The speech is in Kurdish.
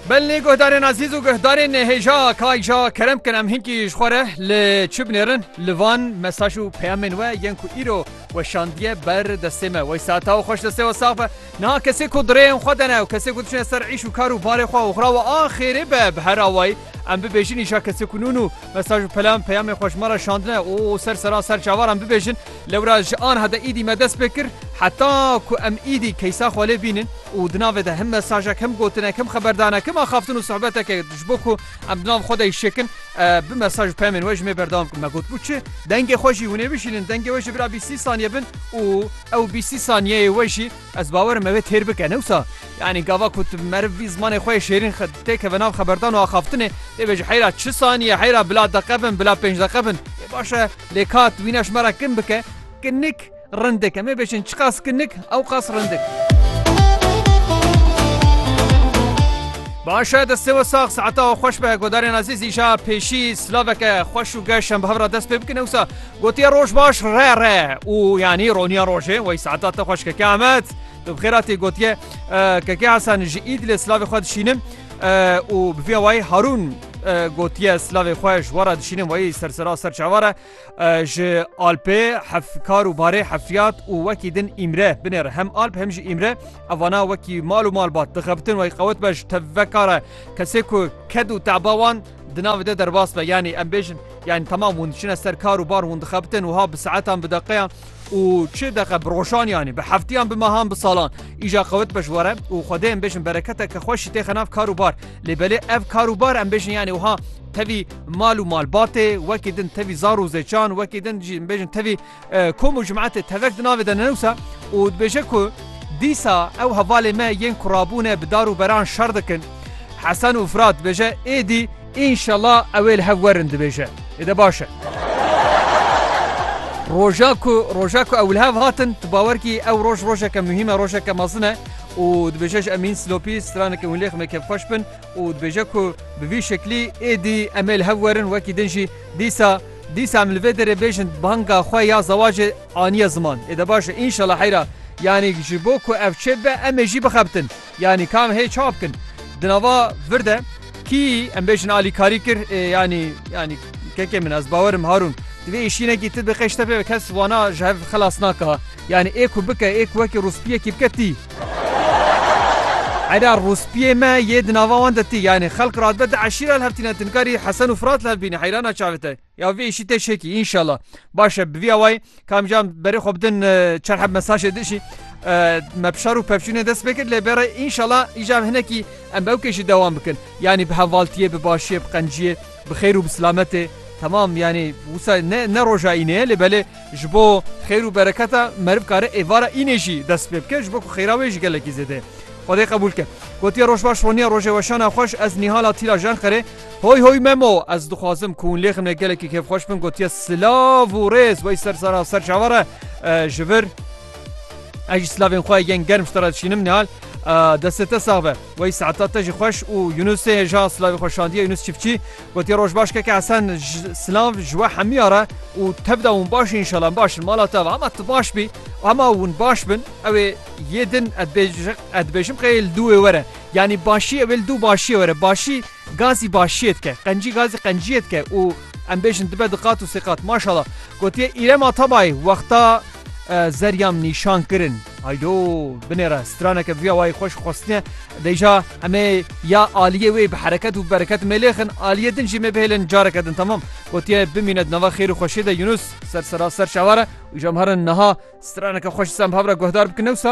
Belê guhdarên Azîz û guhdarên hêja Kayja kerem bikin em hinkî ji xwe re li çi binêrin li van mesaj û peyamên we yên ku îro weşandiye ber destê me wey saeta û xweş destê we sax be niha kesê ku dirêyên xwe dene û kesê ku diçine ser îş û kar û barê xwe û xira we a xêrê be bi her awayî em bibêjin îşa kesê ku nûn û mesaj û pelam peyamên xwe ji me re şandine û ser sera ser çavar em bibêjin Lewra ji anha de îdî me dest pê kir heta ku em îdî keysa xwe lê bînin û di navê de him mesajek him gotinek him xeberdanek him axaftin û sohbeteke ji bo ku em di nav xwe de îşekin bi mesaj û pemên we ji mê berdewam kin me gotbû çi dengê xwe jî hûnê bişînin dengê we ji bira bîstî saniye bin û ew bîstî saniyeyê we jî Ez bawer im ew ê têr bike. Ne wisa? Yanî gava ku tu meriv bî zimanê xwe yê şêrîn têkeve nav xeberdan û axaftinê, dê bêje heyra çi sanîye, heyra bila deqe bin, bila pênc deqe bin. Ê baş e, lê ka tu wîna ji me re kin bike, kinik rindik. Em ê bêjin çiqas kinik, ew qas rindik. Baş e, destê we sax, saeta we xweş be. Godarên Azîz îşa pêşî silaveke xweş û geş em bi hev re dest pê bikin. Ne wisa? Gotiye roj baş re re û yanî roniya rojê wey saeta te xweş keke Ahmet. Tu bi xêr hatî gotiye keke Hasan ji Îdlê silavê xwe dişînim û bi vî awayî Harûn gotiye silavê xwe ji we re dişînim weyî sersera ser çavar e ji Alpê hefkar û barê hefyat û wekî din îmre binêre hem Alp hem jî îmre evana wekî mal û malbat dixebitin wey qewet be ji tevvekare kesê ku ked û teba wan Di navê de derbas be yanî em bêjin yanî temam hûn diçine ser kar û bar hûn dixebitin û ha bi saetan bi deqeyan û çi deqe bi rojan yanî bi heftiyan bi mehan bi salan îja qewit be ji were û xwedê em bêjin bereketeke xweşî tê xenav kar û bar lê belê ev kar û bar em bêjin yanî wiha tevî mal û malbatê wekî din tevî zar û zêçan wekî din jî bêjin tevî Kom û Jim'atê tevek di navê de ne wisa û dibêje ku dîsa ew hevalê me yên ku rabûne bi dar û beran şer dikin. Hesen û Firat dibêje êdî înşela ew ê li hev werin dibêje êde baş e. Roja ku roja ku ew li hev hatin tu bawer kî ew roj rojeke muhîm e rojeke mezin e û dibêje ji Emîn Silopî straneke hûn lê xme kêfxweş bin û dibêje ku bi vî şeklî êdî em ê li hev werin wekî din jî dîsa Dîsa em li vê derê bêjin banga xwe ya zewacê aniye ziman. Ê de baş e înşela heyra yanî ji bo ku ev çê bibe em ê jî bixebitin. Yanî ka em hê çawa bikin? Di nava vir de kî em bêjin alîkarî kir ê yanî yanî kekê min ez bawer im Harûn di vê îşînekî ti bi qeştepê kes wana ji hev xilas naka. Yanî ê ku bike ê ku wekî rûspiyekî bike tî. Eda rûspiyê me yê di nava wan de tî. Yanî xelk radibe di eşîra li hev tîne tu nikarî Hesen û Firat li hev bînî heyrana çavê te. Ya vê îşî tê şekî înşela. Baş e bi vî awayî kam cam berê xwe bidin çar heb mesajê di îşî me pişar û pevçûnê dest pê kir lê bere înşela îcar hinekî em bi ew kêşî dewam bikin. Yanî bi hevaltiyê bi başiyê bi qenciyê bi xêr û bi silametê temam yanî wisa ne ne roja înê ye lê belê Ji bo xêr û bereketa meriv kare êvara înê jî dest pê bike, ji bo ku xêra wê jî gelekî zêde Xwedê qebûl ke. Gotiye Roj baş Roniya rojê weşana xweş ez Nîhala Tîla Jenqerê Hoy hoy Memo ez dixwazim ku hûn lê ximê gelekî kêfxweş bin gotiye Silav û rêz wey ser sara ser çava re ji vir ez jî silavên xwe yên germ ji te re dişînim Nîhal destê te sax be wey saeta te jî xweş û Yunusê hêja silavê xwe şandiye Yunus çiftçî Gotiye rojbaş keke esen silav ji we hemiya re û tevda hûn baş in inşallah em baş in mala te hema tu baş bî hema hûn baş bin ew ê yê din ez dibêjim qey li dû wê were yanî başî ew ê li dû başiyê were başî gazî başiyê dike qencî gazî qenciyê dike û em bêjin dibe di qat û sê qat maşala gotiye îrem atabayî wexta zerya min nîşan kirin. Haydo binêre straneke vîya wayî xweş xwestine dêja emê ya aliyê wê bi hereket û bereket mêlêxin aliyê din jî mêbihêlin careke din temam gotiye bimîne di nava xêr û xweşê de Yunus ser sera ser şeware û jemherin niha straneke xweş semhavre guhdar bikin newsa.